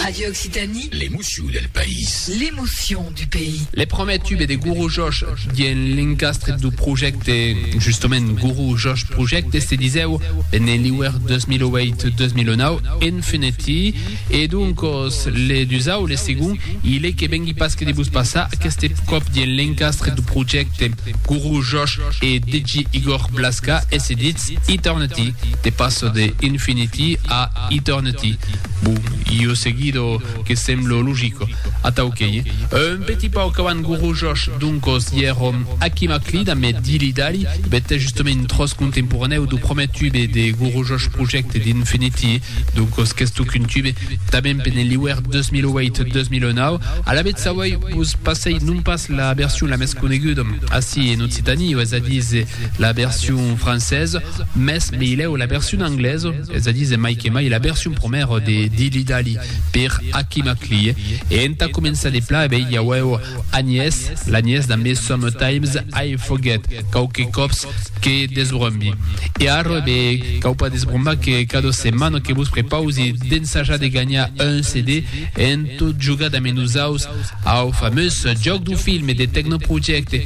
Radio Occitanie. L'emotion del país. L'emotion du pays. Le prumèr tube de Guru Josh dien l'encastre dau projècte, justament Guru Josh Project, se disèu Bene Liwer 2008-2009, Infinity, e doncòs le dusau, le segon, i le que vengui pas que de vos passar, aqueste còp dien l'encastre dau projècte Guru Josh e DJ Igor Blaska e se ditz Eternity, de passar de Infinity a Eternity. Bon, io seguido que semblo logico. Atau qu'ei un petit pauc avant Guru Josh, doncos ièrom aquí maclid a me dilidali, bèth es justament un tròç contemporanèu do prumèr tube de Guru Josh Project d'Infinity, doncos qu'estó qu'un tube, tanben per ne liuèr 2008-2009, alavetz sauèi vos passèi non pas la version la mès coneguda ací en Occitanie, es a díser la version française, mès meilèu la version anglaise. es a díser mai que mai la version promèra de Dilly Dally per Aki Maklie e entà començar de pla e bèi i auèu Agnès, l'agnès damb es Sometimes I Forget quauque còps que desbrombi e ara e bèi cau pas desbrombar que cada setmana que vos prepausi d'ensajar de ganhar un CD en tot jogar damb nosaus au famós Jòc du Film de Tecnoprojecte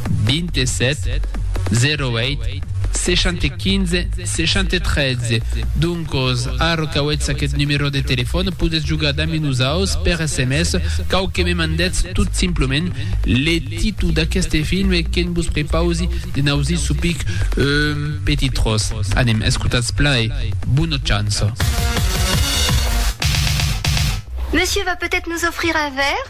27 08 60 15 60 13 doncos arro qu'auetz aqueth numerò de telefòn podetz jogar damb nosaus per sms cau que me mandetz tot simplement le títol d'aqueste film e que'n vos prepausi de n'ausir sopic un petit tròç anem escotatz plan e bona chança. Monsieur va peut-être nous offrir un verre?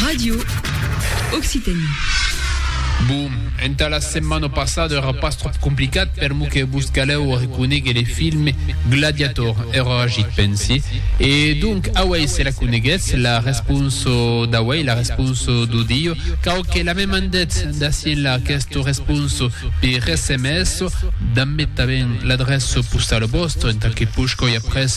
Radio Occitanie. Bon, entà la setmana passada èra pas tròp complicat per mo que vos calèu reconéguer le film Gladiator, èra agit, pensi. E donc, auèi se la coneguètz, la responsa d'auèi, la responsa d'audio, cau que la me mandètz d'ací enlà aquesta responsa per sms, damb metaben l'adrèça postala vòstra entà que posh còir après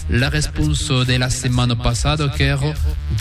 La responsa de la setmana passada qu'èra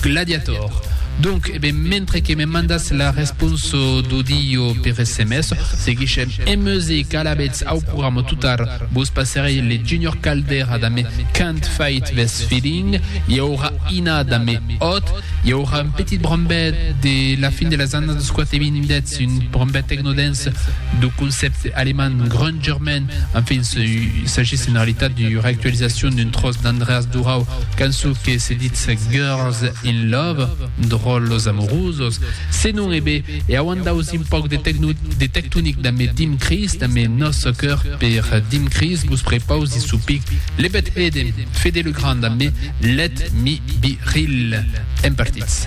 Gladiator. Donc, e ben, mentre que me mandatz la responsa d'audio per sms, seguishem en music alabetz au programa totar vos passerei le Junior Caldera damb Can't Fight This Feeling, i aurà Ina damb Hot, i aurà un petit brambet de la fin de las annadas 4 e 20 deth un brambet techno-dance dau concepte alemand Grungerman, Enfin, s'agís en realitat d'ua reactualizacion d'un tròç d'Andreas Durau, cançon que se ditz Girls in Love, Dròllos Amorosos, se non e be, e auant daus un pauc de tecno, de tectonic damb e Dim Chris, damb e nòste cœur per Dim Chris, vos prepausi sou pic Le Bed Hede, Fede Legrand damb e Let Me Be Real. Èm partits.